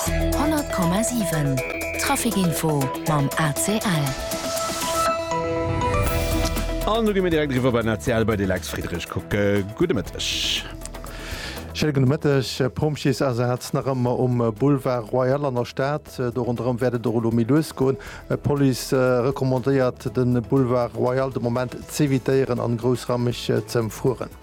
100,7 Trafic Info mam ACL. An do gi mir direkt eriwwer bei den ACL bei de Lex Friedrich kucke. Gudde Mëtteg. Schéine gudde Mëtteg. Pompjeesasaz nach ëmmer um Boulevard Royal an der Stad. Do ronderëm wäert et och elo méi lues goen. D'Police recommandéiert de Boulevard Royal de Moment z'evitéieren an groussraumeg z'ëmfueren.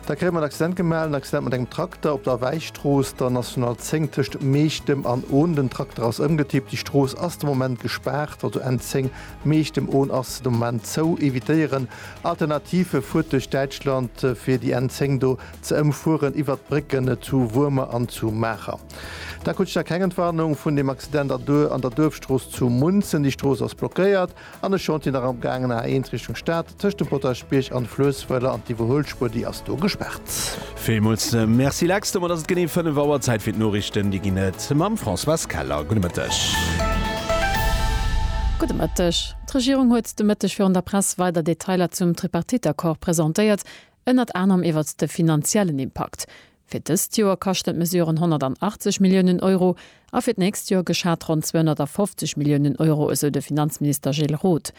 Da kréie mer en Accident gemaach, en Accident mat engem Trakter op der Wäistrooss, der National 10 tëscht Meechtem an Ohn. Den Trakter ass ëmgetippt. Déi Strooss ass de Moment gespaart, also N10 Meechtem, Ohn ass de Moment zou. Evitéieren. Alternative, Fuert duerch Däitschland, fir déi N10 do ze ëmfueren, iwwert d'Brécken zu Wuermer an zu Maacher. Da krut ech da keng Entwarnung vun deem Accident an der Duerfstrooss zu Munzen. Déi Strooss ass blockéiert. An ech schonn, et wier nach am gaangen a A1 Richtung Stad, tëscht dem Potaschbierg an Fluesswëller an d'Iwwerhuelspuer, déi ass do gespaart. Villmools Merci Lex. Domat ass et genee 5 Auer. Zäit fir d'Noriichten. Déi ginn et mam Françoise Keller. Gudde Mëtteg. Gudde Mëtteg. D'Regierung huet de Mëtteg virun der Press weider Detailer zum Tripartite-Accord presentéiert, ënnert anerem iwwert de finanziellen Impakt. Fir dëst Joer kaschten d'Mesuren 180 Milliounen Euro a fir d'nächst Joer geschat ronn 250 Milliounen Euro, esou de Finanzminister Gilles Roth.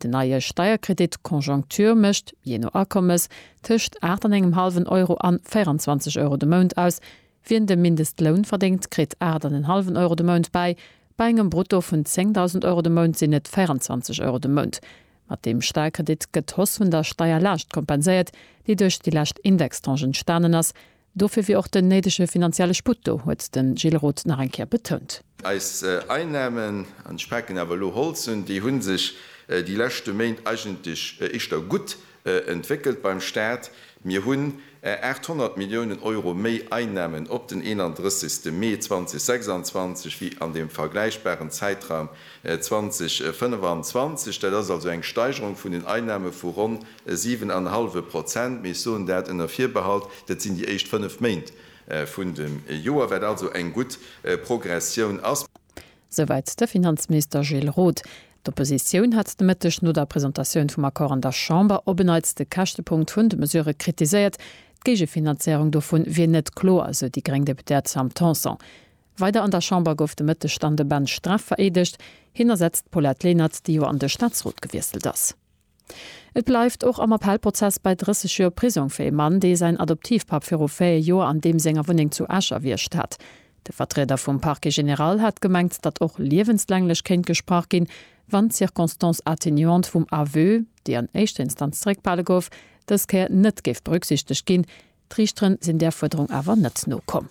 Den neie Steierkredit Conjoncture mécht, jee no Akommes, tëscht aacht an engem hallwen Euro an 24 Euro de Mount aus. Wien de Mindestloun verdéngt, kritt aacht an en hallwen Euro de Mount bäi. Bei engem Brutto vun 10.000 Euro de Mount sinn et 24 Euro de Mount. Mat deem Sparkredit gëtt d'Hausse vun der Steierlaascht kompenséiert, déi duerch déi lescht Indextranche entstanen ass. Dofir wier och den néidege finanzielle Sputt do, huet de Gilles Roth nach eng Kéier betount. Eis Einnahmen, an ech paken awer elo Holz un, déi hu sech déi leschte Méint eigentlech éischter gutt entwéckelt beim Stat. Mir hunn 800 Milliounen Euro méi Einnahmen op den 31. Mee 2026 wéi an dem vergläichbaren Zäitraum 2025. Dat ass also eng Steigerung vun den Einnahme vu ronn e siwen an e hallwe Prozent. Mee ech soen dat ënner Virbehalt, dat sinn déi éischt fënnef Méint vun dem Joer, wat also eng gutt Progressioun ass. Souwäit de Finanzminister Gilles Roth. D'Oppositioun hat de Mëtteg no der Presentatioun vum Accord an der Chamber op en Neits de Käschtepunkt vun de Mesurë kritiséiert. D'Géigefinanzéierung dovu wier net kloer, sou déi gréng Deputéiert Sam Tanson. Weider an der Chamber gouf de Mëtteg dann de Ben Streff vereedegt. Hien ersetzt d'Paulette Lenert, déi jo an de Staatsrot gewiesselt ass. Et bleift och am Appellprozess bei 30 Joer Prisong fir ee Mann, dee säin Adoptivpapp viru 4 Joer an deem senger Wunneng zu Esch erwiergt hat. De Vertrieder vum Parquet général hat gemengt, datt och liewenslänglech kéint gesprach ginn, wann d'Circonstance atténuante vum Aveu, déi an éischter Instanz zeréckbehale gouf, dës Kéier net géif berücksichtegt ginn. D'Riichteren sinn där Fuerderung awer net nokomm.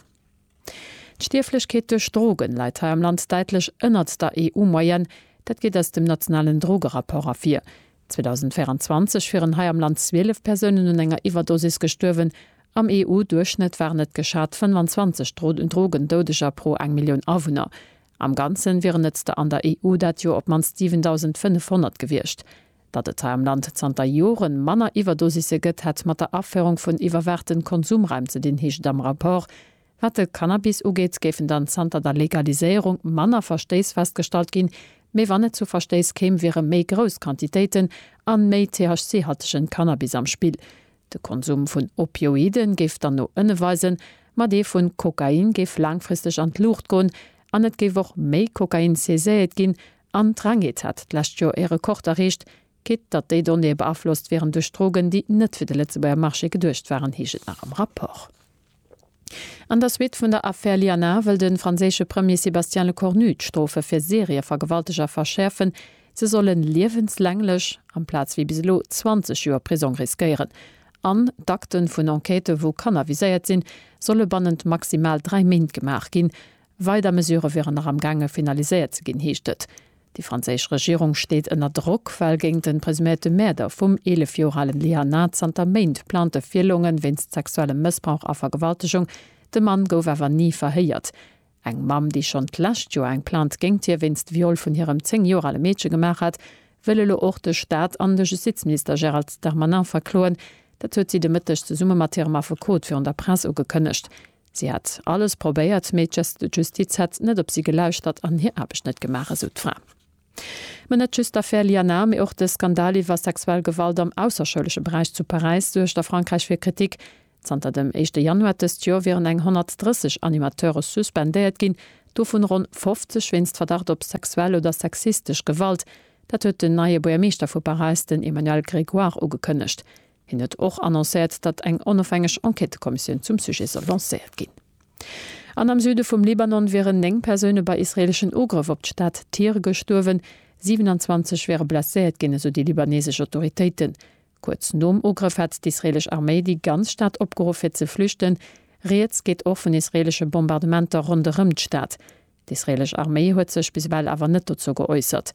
D'Stierflechkeet duerch Drogen läit hei am Land däitlech ënnert der EU-Moyenne. Dat geet aus dem nationalen Drogerapport ervir. 2024 wieren hei am Land 12 Persounen un enger Iwwerdosis gestuerwen. Am EU-Duerchschnëtt waren et geschat 25 Drogendoudeger pro eng Millioun Awunner. Am Ganze wieren et der an der EU dat Joer op d'mannst 7.500 gewiescht. Datt et hei am Land zanter Joren manner Iwwerdosisse gëtt, hätt mat der Aféierung vun iwwerwaachten Konsumraim ze dinn, heescht et am Rapport. Wat de Cannabis ugeet, géifen dann zanter der Legaliséierung manner Verstéiss festgestallt ginn, mee wann et zu Verstéiss kéim, wiere méi grouss Quantitéiten a méi THC-haltegen Cannabis am Spill. De Konsum vun Opioide géif dann no ënne weisen, ma dee vun Kokain géif laangfristeg an d'Luucht goen an et géif och méi Kokain saiséiet ginn, An d'Rengeet hat d'lescht Joer ee Rekord erreecht. Geet datt déi Donnéeë beaflosst wieren duerch Drogen, déi net fir de Lëtzebuerger Marché geduecht waren, heescht et nach am Rapport. An der Suite vun der Affär Lianar wëll de franséische Premier Sébastien Lecornu d'Strofe fir Serievergewalteger verschäerfen. Se solle liewenslänglech, amplaz wéi bis elo 20 Joer Prisong riskéieren. An d'Akte vun Enquêtë wou Kanner viséiert sinn, solle bannent maximal dräi Méint gemaach ginn. Weider Mesurë wieren nach am gaange finaliséiert ze ginn, heescht et. Déi franséisch Regierung steet ënner Drock, well géint de presuméierte Mäerder vum 11 Joer alen Liana zanter Méint plante Virlongen wéinst sexuellem Mëssbrauch a Vergewaltegung. De Mann gouf awer ni verhéiert. Eng Mamm, déi schonn d'lescht Joer eng Plainte géingt hie wéinst Viol vun hirem 10 Joer ale Meedche gemaach hat, wëll elo och de Staat an de Justizminister Gérald Darmanin verkloen. Dat huet si de Mëtteg zesumme mat hirem Affekot virun der Press ugekënnegt. Si hätt alles probéiert, mee d'Justiz hätt net op si gelauschtert an hir Aarbecht net gemaach, esou d'Fra. Ma net just d'Affär Lianar, mee och de Skandal iwwer sexuell Gewalt am ausserschoulesche Beräich zu Paräis suergt a Frankräich fir Kritik. Zanter dem éischte Januar dëst Joer wieren eng 130 Animateure suspendéiert ginn, dovun ronn 50 wéinst Verdacht op sexuell oder sexistesch Gewalt. Dat huet den neie Buergermeeschter vu Paräis, den Emmanuel Grégoire, ugekënnegt. Hien huet och annoncéiert, datt eng onofhängeg Enquêtekommissioun zum Sujet soll lancéiert ginn. An am Süde vum Libanon wieren 9 Persoune bei israeeleschen Ugrëff op d'Stad Tyr gestuerwen, 27 wiere blesséiert ginn, esou déi libaneesesch Autoritéiten. Kuerz nom Ugrëff hat d'israeelesch Arméi déi ganz Stad opgeruff fir ze flüchten. Rieds geet och vun israeelesche Bombardementer ronderëm d'Stad. D'israeelesch Arméi huet sech bis ewell awer net dozou geäussert.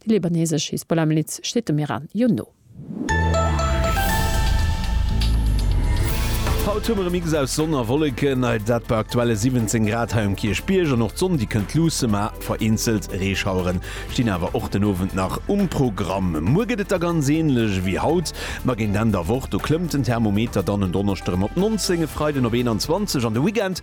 Déi libanesesch Hisbollah-Miliz steet dem Iran jo no. Haut hu mer e Mix aus Sonn a Wolleken, dat bei aktuelle 17 Grad hei um Kierchbierg. An och d'Sonn, déi kënnt luusse, ma vereenzelt Reeschauere stinn awer och den Owend nach um Programm. Muer gëtt et da ganz änlech wéi haut, ma géint Enn der Woch, do klëmmt den Thermometer dann en Donneschde rëm op 19, e Freiden op 21. An de Weekend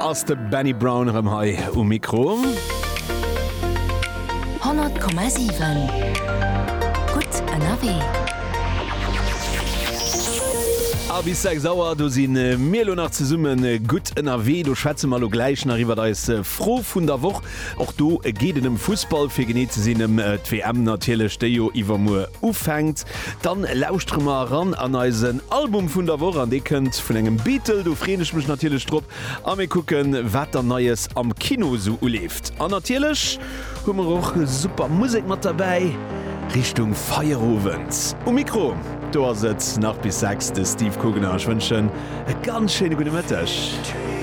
Ass de Benny Brown erëm hei um Mikro? 100,7 Gutt ënnerwee. A bis 6 Auer, do si mir elo nach zesumme gutt ënnerwee. Do schwätze mer elo gläich nach iwwert eis Fro vun der Woch. Och do geet et ëm Fussball, fir genee ze sinn ëm d'WM natierlech, déi jo iwwermuer ufänkt. Dann lauschtere mer eran an eisen Album vun der Woch an dee kënnt vun engem Beatle, do freeën ech mech natierlech drop a mir kucken, wat dann Neies am Kino esou uleeft. An natierlech hu mer och super Musek mat derbäi Richtung Feierowend. Um Mikro do ass et nach bis 6 de Steve Kugner. Ech wënschen e ganz schéine gudde Mëtteg.